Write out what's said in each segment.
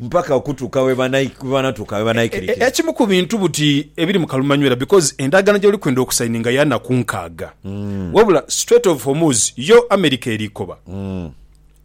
Mpaka okutuuka bwe banatuuka bwe banaikirikira. Ekimu ku bintu buti ebiri mu kalumanywera because endagaano gyoli kwenda okusaininga ya naku nkaaga wabula Strait of Hormuz yo America eri koba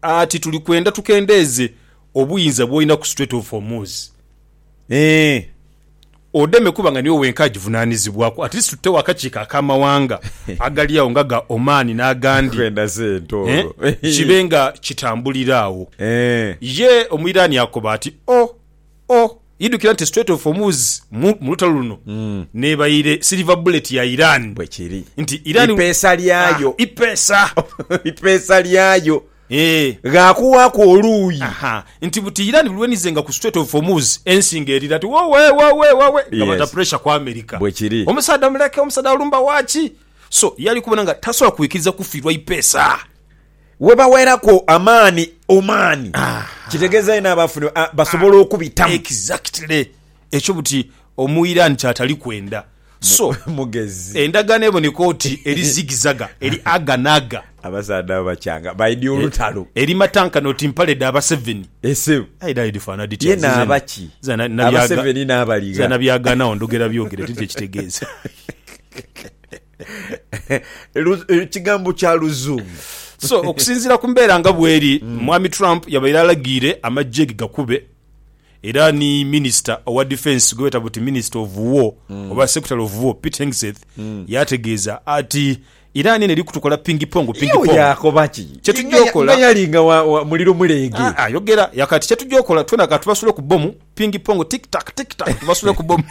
ati tuli kwenda tukendeeze obuyinza bwolina ku Strait of Hormuz. Odeme kuba nga niwe wenka agivunaanizibwaku, at least tutewo akakiiko ak'amawanga agali agho nga ga Oman n'agandi eh kibe nga kitambulira agho. Ye Omuiraani akoba ati, Oh! Oh! Idhukira nti Strait of Hormuz mu mu lutalo luno n'ebaire silver bullet ya Iran. Bwekiri. Nti Iran, Ipeesa lyayo. ah, ipeesa. Ipeesa lyayo. ghaakuwaaku oluuyi. Aha, nti buti Iran lulwenizenga ku Strait of Hormuz, ensi ng'erira ati, Wowee, wowee, wowee, nga bata puresha ku America. Bwe kiri. Omusaadha muleke, omusaadha alumba waaki? So, ye ali kubona nga tasobola kwikiriza kufiirwa ipeesa. Webaweeraku amaani, omaani, kitegeeza yenna aba afunye, basobola okubitamu. Exactly. Ekyo buti Omuiran ky'atali kwenda. So, Mugezi. endagaano eboneka oti eri zigizaga, eri aga n'aga. Abasaadha abo bakyanga baidhi olutalo. Eri matankane oti mpale dha Baseveni. Ye Sebo. Aye dhali dhifaanana dhitya? Ye naaba ki? Nze na, nabyaga, Abaseveni n'abali nze gha. nabyagaanagho ndhogera byogere teri kye kitegeeza. Lu- eh, Kigambo kya Luzungu. So, okusinziira ku mbeera nga bweri, Mwami Trump yabaire alagiire amaggye ge gakube Era ni minisita owa difensi gwebeeta buti Minister of War oba Secretary of War Pete Hegseth yaategeeza ati, Iran eno eri kutukola pingi pongo pingi pongo. Yaakoba ki? Kyetujja okola. Nga yali nga wa muliro muleege. Aa, yogera. Yaakoba ati, Kyetujja okola, twena ka tubasule ku bbomu, pingi pongo, tick tack, tick tack, tubasule ku bbomu.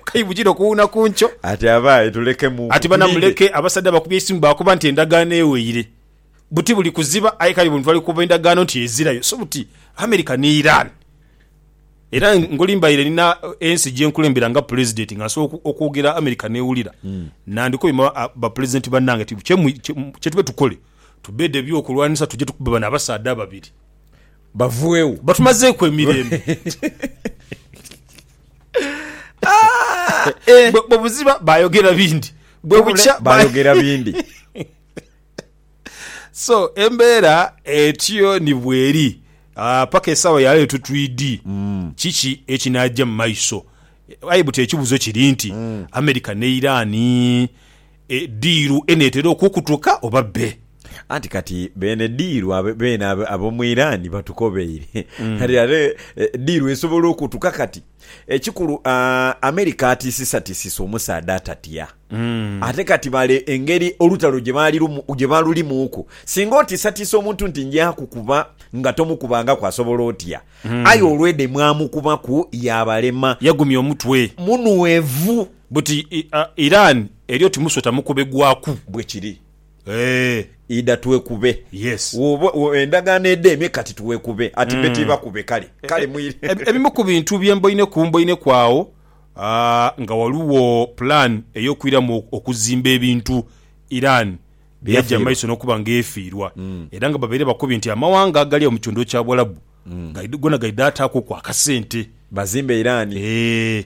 Kayi bujire okuwuuna ku nkyo. Ati, Abaye tulekemu. Ati, Bana muleke. Abasaadha bakubye eisimu baakoba nti endagaano eweire. buti buli kuziba aye kale buno twali kukoba endagaano nti ezirayo so buti America ni Iran era ngolimbaire nina ensi gyenkulembera nga Pulezidenti nga nsobola okwogera America newulira mm. nandikobye bapulezidenti banange ti kyetube tukole tubede ebyokulwanisa tuje tukube bano abasaadha ababiri bavuewo batumazeeku emirembe ah, eh. bwebuziba bayogera bindi bwebukya bayogera bindi So embeera etyo ni bw'eri paka esaawa ya leero. Titwidhi kiki ekinaagya mu maiso, aye buti ekibuzo kiri nti America ne Iran diiru eneetera okukutuka oba bbe? Anti kati beene diiru beene ab'omu Iran batukobeire kati ate diiru esobola okutuka kati? Ekikulu America atiisisatiisisa omusaadha atatya. Ate kati bale engeri olutalo gye balulimuuku. Singa otiisatiisa omuntu nti nja kukuba nga tomukubangaku asobola otya? Aye olw'edha emwamukubaku yaabalema. Yagumya omutwe. Munhwevu. Buti Iran eri oti musota mukubegwaku. Bwekiri. Eeh. Idha twekube. Yes. Woba wo endagaano edheemye kati twekube. Ati be tibakube kale. Kale mwire. Ebimu ku bintu bye mboine ku mboine ku agho nga ghaligho plan ey'okwiramu okuzimba ebintu Iran bye yaja mu maiso n'okuba nga efiirwa era nga babaire bakobye nti amawanga agali agho mu kitundu kya Buwalabu goona gaidha ataaku ku akasente. Bazimbe Iran. Eeh.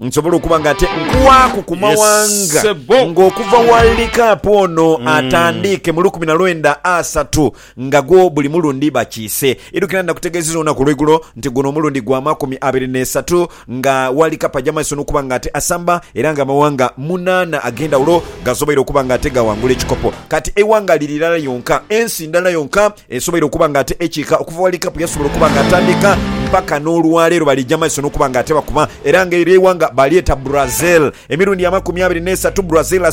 Nsobola okuba nga ate nkwaaku ku mawanga nga okuva World Cup ono atandiike mu lukumi na lwenda asatu nga gwo buli mulundi bakiise. Idukira nakutegeezeza olunaku olweigulo nti guno omulundi gwa makumi abiri n'esatu nga World Cup aja maiso n'okuba nga ate asamba era nga amawanga munaana ag'endhawulo gasoboire okuba nga ate gaghangula ekikopo. Kati eighanga liri irala lyonka, ensi ndala yonka Esobola okuba nga ate ekiika okuva ghali kapu yasobola okuba nga atandika mpaka n'olwaleero baliija maiso n'okuba nga ate bakuba era nga eryo eighanga balyeta Brazil emirundi amakumi abiri n'esatu Brazil asobola